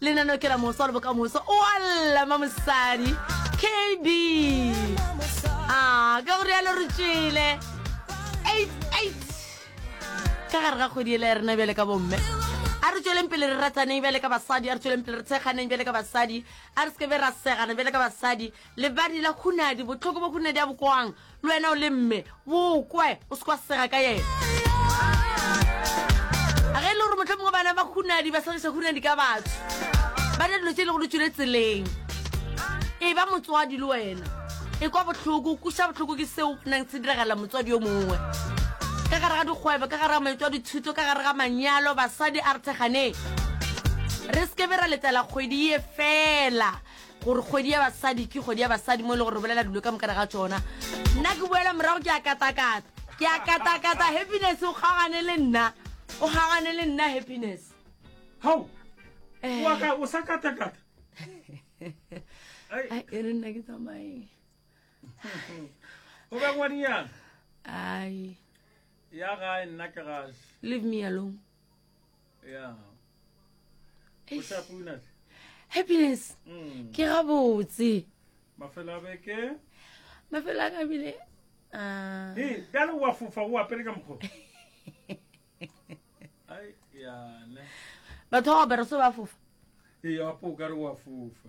Lenaneo ke la moso le bokamoso. O a lla ma mosadi. KB. Ah, ka gore ya lo re tšele. 88. Ka gare ga kgwedi ele ya rena bjale ka bomme. A re tšweleng pele re rataneng bjale ka basadi, a re tšweleng pele re tsheganeng bjale ka basadi, a re se ke be ra segana bjale ka basadi. Lebadi la hunadi, botlhoko bo hunadi a bokwang. le wena o le mme bokwe o se kwa sega ka yena a ge e le gore motlho mongwe bana ba hunadi ba segiša hunadi ka batho ba na dilo tse e le go le tswile tseleng e ba motswadi le wena e kwa botlhoko kuša botlhoko ke seo nang se diragala motswadi yo mongwe ka gare ga dikgwebo ka gare ga maito a dithuto ka gare ga manyalo basadi a re thekganeng re sekebe ra letela kgwedi ye fela gore kgwedi ya basadi ke kgwedi ya basadi mo e le gore re bolela dilo ka mokana ga tsona nna ke boela morago ke a katakata ke a katakata happiness o kgaogane le nna o kgaogane le nna happiness hao eh. waka o sa katakata e re nna ke tsamaeng o be godinyana ai ya gae nna ke gase leave me alone happiness mm. ke gabotse mafelo a beke mafelo a kabile ah. bjale wa fofa o apere ka mokgo batho ba opera so ba fofa ee apo o kare wa fofa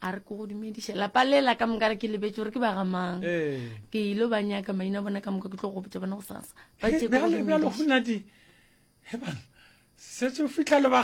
a re ko go dumediša lapa le la ka moka re ke lebetse gore ke ba ga mang eh. ke ile ba nyaka maina bona ka moka ke tlo go gopotsa bona go sasa ba tse go dumediša setse o fitlha lebaka